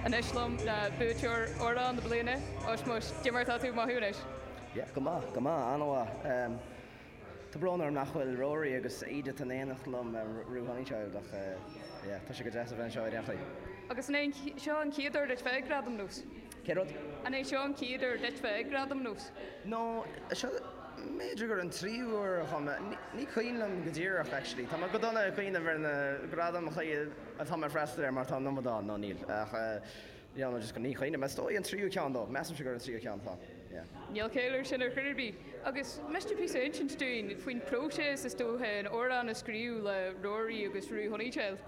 Anois liom le buaiteoir Amhrán na Bliana, Osmois, Cad é mar atá tú maidin inniu. Yeah, go maith, go maith, an-mhaith. Tá brón orm nach bhfuil Rory agus Edith in éineacht liom, Rue Honeychild, ach yeah, tá sé go deas a bheith anseo i Reachraidh. Agus an é seo an chéad uair duit bheith ag Gradaim NÓS? Cén rud? An é seo an chéad uair duit bheith ag Gradaim NÓS? No, seo, mb'fhéidir gur an tríú huair a chuaigh mé, ní cuimhin liom go díreach actually. Tá mé go dona ag cuimhneamh ar na gradaim a chuir. Tá mé ag freastal air mar tá an iomad ann, nó níl. Ach yeah, nó just go míchaoin, is dóigh an tríú ceann dó, measaimse gur an tríú ceann atá ann, yeah. Níl ceal air sin ar chor ar bith. Agus meas tú píosa a insint dúinn faoin phróiseas is dóiche, an amhrán a scríobh le Rory agus Rue Honeychild?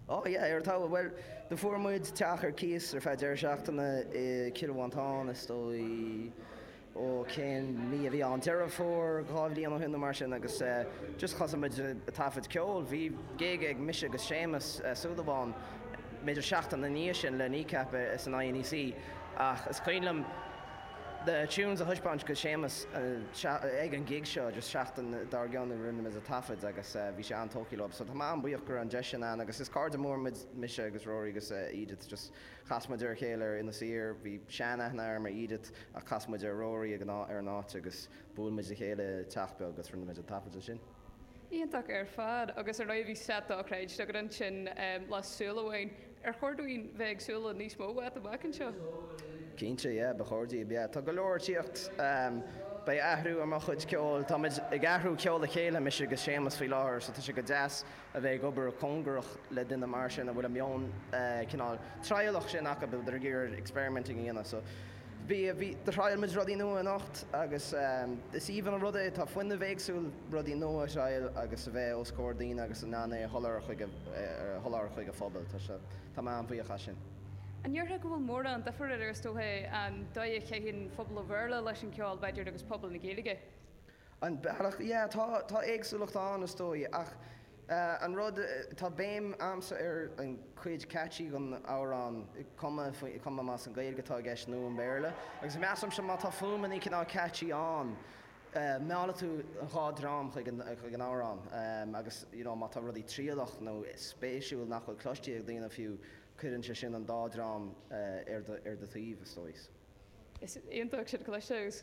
Oh yeah, ar an talamh, bhuel, do fuair muid teach ar cíos ar feadh deireadh seachtaine i Cill Mhantáin, is dóigh, ó cén mí a bhí ann, Deireadh Fómhair dhá bhliain ó shin nó mar sin agus just thosaigh muid ag taifead ceoil, bhí gig ag mise agus Séamus Súilleabháin b'fhéidir seachtain ina dhiaidh sin le Kneecap san INEC ach is cuimhin liom na tunes a thaispeáint do Séamus ag an gig seo just seachtain dár gcionn a rinne muid an taifead agus bhí sé an-tógtha leo so tá mé an-bhuíoch go raibh an deis sin ann agus is cairde mór muid mise agus Rory agus Edith just Chas muid ar a chéile ar Inis Oírr. Bhí sean-aithne agam ar Edith ach chas muid ar Rory ag an ar an áit agus bhuail muid le chéile i teach beag agus rinne muid an taifead ansin. Iontach ar fad. Agus ar ndóigh bhí set dochreidte agat ansin le Súil Amháin. Ar chóir dúinn bheith ag súil le níos mó uait amach anseo? Cinnte, yeah, ba chóir daoibh, yeah. Tá go leor ag tíocht. Beidh athrú ar mo chuid ceoil. Táimid ag athrú ceol le chéile, mise agus Séamus faoi láthair so tá sé go deas. a bheith ag obair cóngarach le duine mar sin a bhfuil an meon cineál trialach sin acu, a bhfuil ag iarraidh experimenting a dhéanamh. So b'é, b'é, thriail muid rudaí nua anocht agus is aoibhinn an rud é, tá fuinneamh éagsúil rudaí nua a thriail agus a bheith os comhair daoine agus in ann é a sholáthar chuig a, a sholáthar chuig a phobal. Tá sé, tá mé an-bhuíoch as sin. An ndéarfá go bhfuil mórán difir idir, is dócha, an dóigh a chaitheann phobal an Bhéarla leis an cheol, b'fhéidir, agus pobal na Gaeilge? An bealach? Yeah, tá, tá éagsúlacht ann, is dóigh, ach an rud, tá béim a'msa ar an chuid catchy den amhrán, cuma, cuma más í an Gaeilge atá i gceist nó an Béarla, agus measaimse má tá fuaim chineál catchy ann, meallfaidh tú an dhá dhream chuig an, chuig an amhrán, agus, you know, má tá rudaí trialach nó spéisiúil nach bhfuil cloiste ag daoine fiú, cuireann sé sin an dá dhream ar do, ar do thaobh, is dóigh. Is iontach sin a chloisteáil agus.